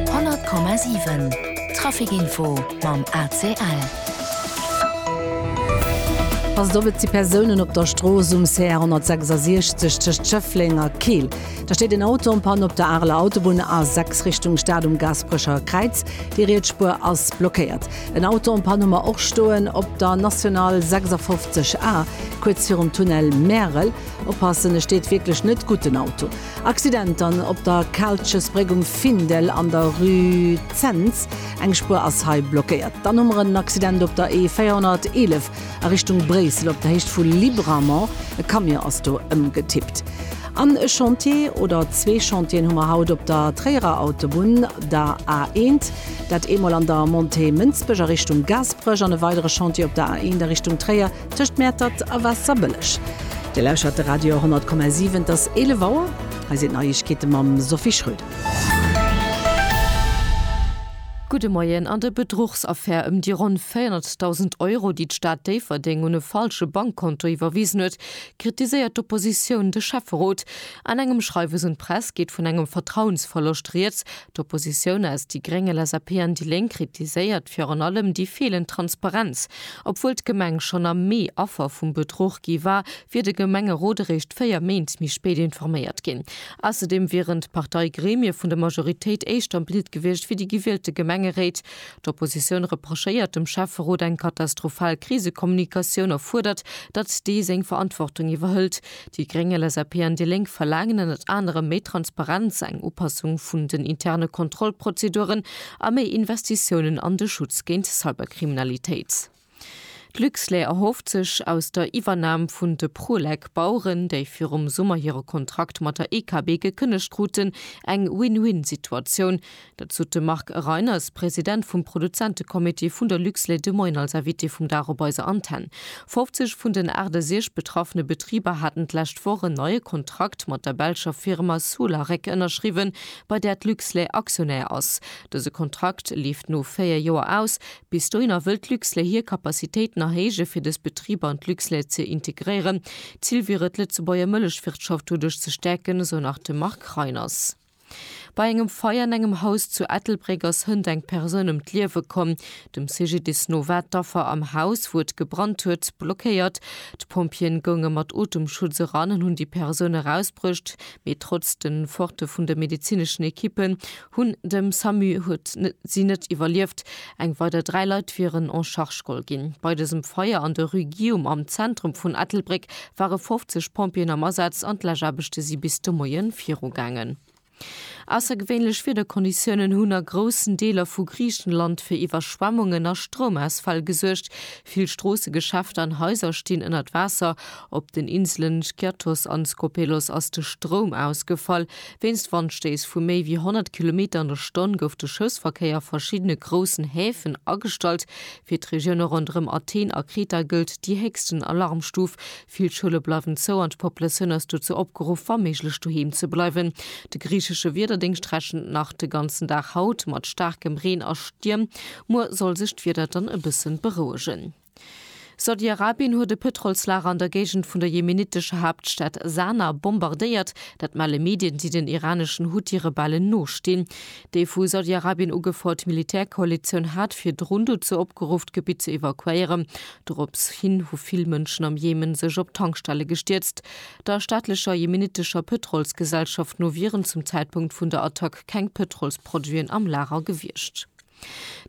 100,7 Trafic Info mam ACL. Ass et op et si Persounen op der Strooss um CR 166 tëscht Schëffleng a Keel. Da steet en Auto am Pann op der Areler Autobunn A6 Richtung Stad um Gaasperecher Kräiz. Déi riets Spuer ass blockéiert. En Auto am Pann hu mer och stoen op der National 56 A, kuerz virum Tunnel Märel. Oppassen, e steet wierklech net gutt den Auto. Accident dann op der Kaaltjesbréck um Findel an der Rue Zens. Eng Spuer ass hei blockéiert. Dann hu mer en Accident op der E 411 a Richtung Bréissel op der Héicht vu Libramont. E Camion ass do ëmgetippt. An e Chantier oder zwee Chantieren hu mer haut op der Tréierer Autobunn, der A 1. Dat eemol an der Montée Mënsbech a Richtung Gaasperech an e weidere Chantier op der A 1 a Richtung Tréier. Tëscht Mäertert a Waasserbëlleg. Dir lauschert de Radio 100,7. Et ass 11 Auer. Hei sinn d'Neiegkeete mam Sophie Schröder. Gudde Moien. An der Bedruchsaffär ëm déi ronn 400.000 Euro, déi d'Stad Déifferdeng un e falsche Bankkonto iwwerwisen huet, kritiséiert d'Oppositioun de Schäfferot. An engem Schreiwes un d'Press geet vun engem Vertrauensverloscht rieds, D'Oppositioun aus déi Gréng, LSAP an déi Lénk kritiséiert virun allem déi feelend Transparenz. Obwuel d'Gemeng schonn am Mee Affer vum Bedruch gi war, wier de Gemengerot eréischt véier Méint méi spéit informéiert ginn. Ausserdeem wieren d'Parteigremie vun der Majoritéit éischter am Bild gewiescht wéi déi gewielte Gemengeréit. D'Oppositioun reprochéiert dem Schäfferot eng katastrophal Krisekommunikatioun a fuerdert, datt dee seng Verantwortung iwwerhëlt. Déi Gréng, LSAP an déi Lénk verlaangen ënnert anerem méi Transparenz, eng Upassung vun den interne Kontrollprozeduren a méi Investitiounen an de Schutz géint Cyberkriminalitéit. D'Luxlait erhofft sech aus der Iwwernam vun de Prolec Baueren, déi virum Summer hire Kontrakt mat der EKB gekënnegt kruten, eng Win-Win-Situatioun. Dat sot de Marc Reiners, President vum Produzentecomité vun der Luxlait de Moien als Invité vum Dag op eiser Antenn. 50 vun den 68 betraffene Betriber haten d'lescht Woch en neie Kontrakt mat der belscher Firma Solarec ënnerschriwwen, bei där d'Luxlait Aktionär ass. Dëse Kontrakt leeft no 4 Joer aus. Bis dohinner wëll d'Luxlait hir Capacitéiten erhéije fir dës Betriber an d'Luxlait ze integréieren. Zil wier et, d'Lëtzebuerger Mëllechwirtschaft doduerch ze stäerken, esou nach de Marc Reiners. Bei engem Feier an engem Haus zu Ettelbréck ass hënt eng Persoun ëm d'Liewe komm. Dem CGDIS no war d'Affer am Haus, wou et gebrannt huet, blockéiert. D'Pompjeeën gounge mat Otemschutz eran an hunn déi Persoun erausbruecht, mee trotz de Forte vun de medezineschen Ekippen hunn dem Samu huet si net iwwerlieft. Eng weider dräi Leit wieren en charge geholl ginn. Bei dësem Feier an der Rue Guillaume am Zentrum vun Ettelbréck ware 50 Pompjeeën am Asaz an d'Läschaarbechte si bis de Moie virugaangen. Aussergewéinlech Wiederkonditiounen hunn a groussen Deeler vu Griichenland fir Iwwerschwemmungen a Stroumausfäll gesuergt. Vill Stroosse, Geschäfter an Haiser stinn ënnert Waasser. Op den Inselen Skiathos an Skopelos ass de Stroum ausgefall. Wéinst Wandstéiss vu méi wéi 100 Kilometer an der Stonn gouf de Schëffsverkéier a verschiddene groussen Häfen agestallt. Fir d'Regioune ronderëm Athen a Kreta gëllt déi héchsten Alarmstuf. Vill Schoule bleiwen zou an d'Populatioun ass dozou opgeruff, wa méiglech doheem ze bleiwen. De griichesche Wiederdéngscht rechent nach de ganzen Dag haut mat staarkem Reen a Stierm. Muer soll sech d'Wieder dann e bësse berouegen. Saudi-Arabien huet e Pëtrolslager an der Géigend vun der jemenittescher Haaptstad Sana bombardéiert. Dat melle Medien, déi den iraneschen Huthi-Rebellen nostinn. Déi vu Saudi-Arabien ugefouert Militärkoalitioun hat virdrun dozou opgeruff, d'Gebitt ze evakuéieren. Dorops hin hu vill Mënschen am Jemen sech op Tankstelle gestierzt. Der staatlecher jemenittescher Pëtrolsgesellschaft no wieren zum Zäitpunkt vun der Attack keng Pëtrolsproduiten am Lager gewiescht.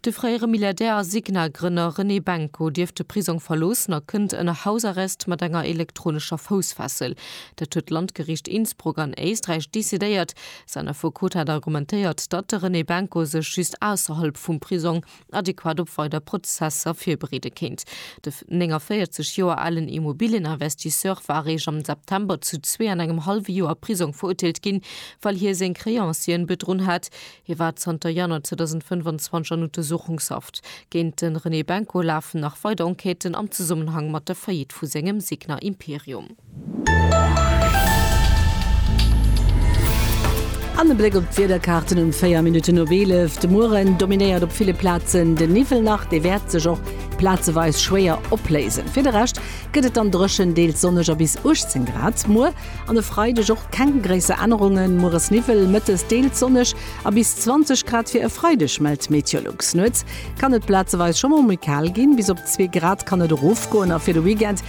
De fréiere Milliardär a Signa-Grënner René Benko dierft de Prisong verloossen a kënnt ënner Hausarrest mat enger elektronescher Foussfessel. Dat huet d'Landgeriicht Innsbruck an Éisträich decidéiert, Säin Affekot hat argumentéiert, datt de René Benko sech just ausserhalb vum Prisong adequat op weider Prozesser virbereede kéint. De 49 Joer alen Immobilieninvestisseur war eréischt am September zu zwee an engem hallwe Joer Prisong verurteelt ginn, well hie seng Créancieren bedrunn hat. Hie war zanter Januar 2025 an Untersuchungshaft. Géint de René Benko lafen nach weider Enquêten am Zesummenhang mat der Faillite vu sengem Signa Imperium. An e Bléck op d'Wiederkaarten um 4 Minutten op 11. De Mueren dominéiert op ville Plazen de Niwwel nach, dee wäert sech och plazeweis schwéier opléisen. Fir de Rescht gëtt et dann dréchen, deels sonneg a bis 18 Grad. Muer an e Freideg och keng gréisser Ännerungen, mueres Niwwel, mëttes deels sonneg a bis 20 Grad fir e Freideg, mellt Meteolux. Nuets kann et plazeweis scho mol méi kal ginn, bis op zwee Grad kann et erofgoen a fir de Weekend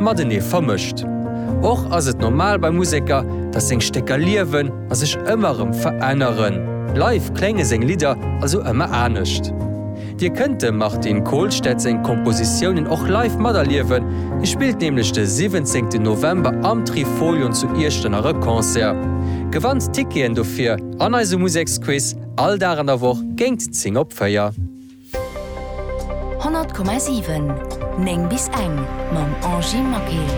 matenee vermëscht. Och ass et normal bei Museker, datt seng Stécker liewen a sech ëmmer erëm veränneren. Live klénge seng Lidder also ëmmer anescht. Dir kënnt dem Martin Kolstad seng Kompositiounen och live materliewen, hie spillt nämlech de 17 November am Trifolion zu Iechternach e Concert. Gewannt d'Ticketen dofir an eisem Museksquiz all Dag an der Woch géingt 10 op 4. 100,7 9 bis eng mam Angy Maquil.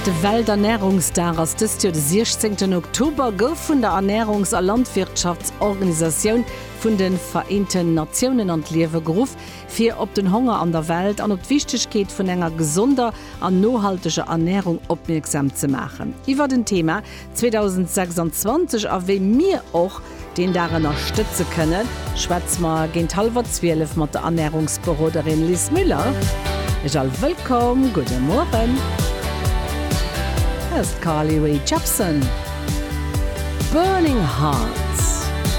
De Welternärungsdag ass dëst Joer de 16 Oktober, gouf vun der Ernärungs a Landwirtschaftsorganisatioun vun de Vereenten Natiounen an d'Liewe geruff, fir op den Honger an der Welt an op d'Wichtegkeet vun enger gesonder an nohalteger Ernärung opmierksam ze maachen. Iwwert en Thema 2026 a wéi mir och. deen Dag ënnerstëtze kënnen, schwätze mer géint hallwer 12 mat der Ernärungsberoderin Liz Müller. Iech all wëllkomm, gudde Mueren. Hei ass d'Carly Rae Jepsen, Burning Hearts.